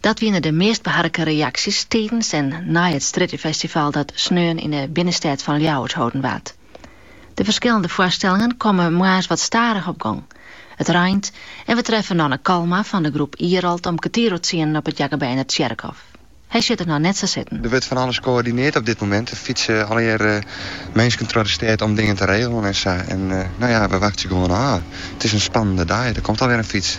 Dat wiene de meast beharke reaksjes tidens en nei it Strjittefestival dat sneon yn 'e binnenstêd fan Ljouwert holden waard. De ferskillende foarstellingen komme moarns wat stadich op gong. It reint en we treffe Nanne Kalma fan de groep Ierald om kertier oer tsienen op it Jakobijner Tsjerkhôf. Hy sjocht it noch net sa sitten. Der wurdt fan alles koördineard op dit momint. Der fytse allegearre minsken troch de stêd om dingen te regelen en sa. En no ja, we wachtsje gewoan ôf. It is in spannende dei. Der komt alwear in fyts.